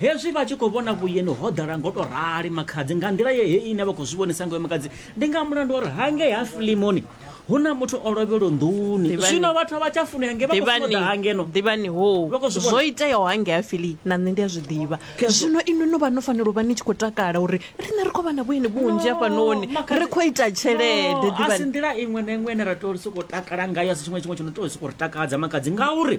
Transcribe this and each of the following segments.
Hezwi vha tshi khou vhona vhueni ho ḓala ngo tou rali makhadzi nga nḓila ye hei ine vha khou zwi vhonisa ngayo makhadzi, ndi nga mulandu wa uri hangei ha Filimoni hu na muthu o lovhelwa nḓuni. Ḓivhani- Zwino vhathu a vha tsha funea nge vha khou funa u ḓa ha ngeno. Ḓivhani, ḓivhani, hoo, Vha khou zwi vhona. zwo iteaho hangei ha Fili na nṋe ndi a zwi ḓivha. Khezwo. Zwino inwi no vha no fanela u vha ni tshi khou takala uri riṋe ri khou vha na vhueni vhunzhi No, hafhanoni, makhadzi- ri khou ita tshelede, No, a si ḓivhani. nḓila iṅwe na iṅwe ine ra tea u sokou takala ngayo, a si tshiṅwe na tshiṅwe tsho no tea u sokou ri takadza makhadzi, ngauri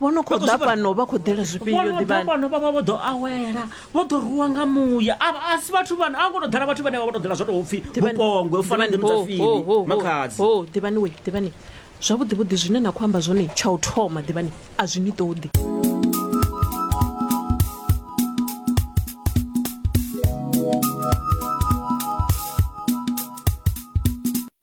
vho no khou ḓa fhano vha khou ḓela zwifhio ḓivhani vho no ḓa fhano vhaṅwe vho ḓo awela vho ḓo ruwa nga muya a a si vhathu vhana a ngo to ḓala vhathu vhane vha vho to ḓela zwo to pfi vhupongwe u fana ndi mutafini makhadzi ho ḓivhani we ḓivhani zwavhuḓi vhuḓi zwine na khou amba zwone tsha u thoma ḓivhani a zwi ni ṱoḓi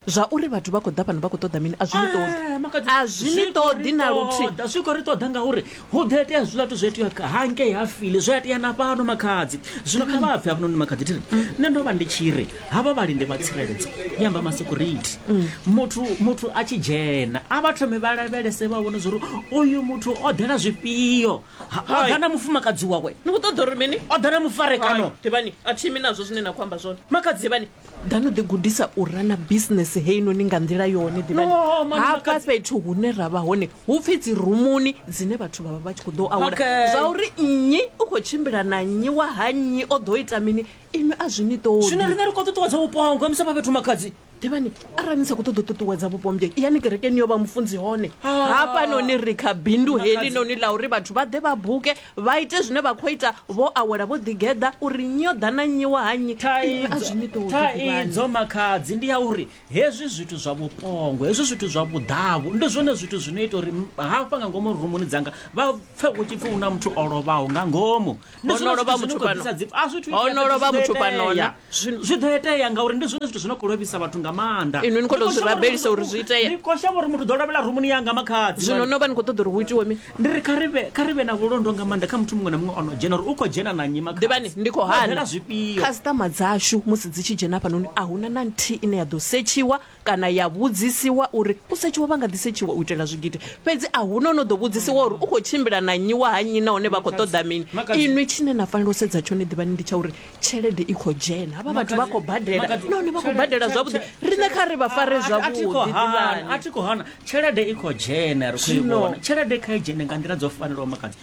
Zwa uri vhathu vha khou ḓa fhano vha khou ṱoḓa mini a zwi ni ṱoḓi. Ee, makhadzi, A zwi ni khou ṱoḓi ri na luthihi. ṱoḓa, zwi khou ri ṱoḓa ngauri hu ḓo itea zwiḽa zwithu zwo itea kha- hangei ha file zwo itea na fhano makhadzi zwino kha vha bve hafhanoni makhadzi thiri nṋe ndo vha ndi tshi ri havha vhalindi vha tsireledzo ndi amba masecurity muthu muthu a tshi dzhena a vha thome vha lavhelese vha vhone zwori uyu muthu o ḓela zwifhio Ha- o Hai. ḓa na mufumakadzi wawe ni khou ṱoḓa uri mini o ḓa na mufarekano Hai, ḓivhani a thimi nazwo zwine na khou amba zwone Makhadzi. ḓivhani ḓa no ḓigudisa u rana bisinese heinoni nga nḓila yone ḓivhahafha fhethu hune ra vha hone hu pfi dzi rumuni dzine vhathu vha vha vha tshi khou ḓo awela zwa uri nnyi u khou tshimbila na nnyi wa ha nnyi o ḓo ita mini inwi a zwi ni ṱoḓizwino rine ri khou ṱuṱuwedza vhupo ha ngwamisa vha fhethu makhadzi ḓivhani arali ni sa khou ṱoḓa u ṱuṱuwedza vhupo mbyei yani kerekeni yo vha mufunzi hone ah. hafha noni ri kha bindu heḽi noni ḽa uri vhathu vha ḓe vha buke Vha ite zwine vha khou ita vho awela vho ḓigeḓa uri nyo ḓa na nnyi wa ha nnyi, inwi a zwi ni tou ḓivhani. Thaidzo makhadzi ndi ya uri hezwi zwithu zwa vhuṱongo, hezwi zwithu zwa vhuḓavhu ndi zwone zwithu zwi no ita uri hafha nga ngomu rumuni dzanga vha pfe hu tshi pfi hu na muthu o lovhaho nga ngomu. Ho no lovha muthu fhano, ho no lovha muthu fhano na. Zwi, zwi ḓo itea ngauri ndi zwone zwithu zwi no khou lovhisa vhathu nga maanḓa Inwi ni khou tou zwi rabelisa uri zwi itee. ni khou shavha uri muthu ḓo lovhela rumuni yanga makhadzi zwino no vha ni khou ṱoḓa uri hu itiwe mini ndi ri kha ri vhe kha ri vhe na vhulondo nga maanḓa kha muthu muṅwe na muṅwe o no dzhena uri u khou dzhena na nnyi makhadzi ḓivhani ndi khou Vha hana ḓela zwifhio khasiṱama dzashu musi dzi tshi dzhena hafhanoni a huna na nthihi ine ya ḓo setshiwa kana ya vhudzisiwa uri u setshiwa vha nga ḓi setshiwa u itela zwigidi fhedzi a huna no ḓo vhudzisiwa uri u khou tshimbila na nnyi wa ha nnyi nahone vha khou ṱoḓa mini inwi tshine na fanela u sedza tshone ḓivhani ndi tsha uri tshelede i khou dzhena havha vhathu vha khou badela nahone vha khou badela zwavhuḓi riṋe kha ri vha fare zwavhuḓi a thi khou hana tshelede i khou dzhena ri khou i vhona tshelede kha i dzhene nga nḓila dzo fanelaho makadzi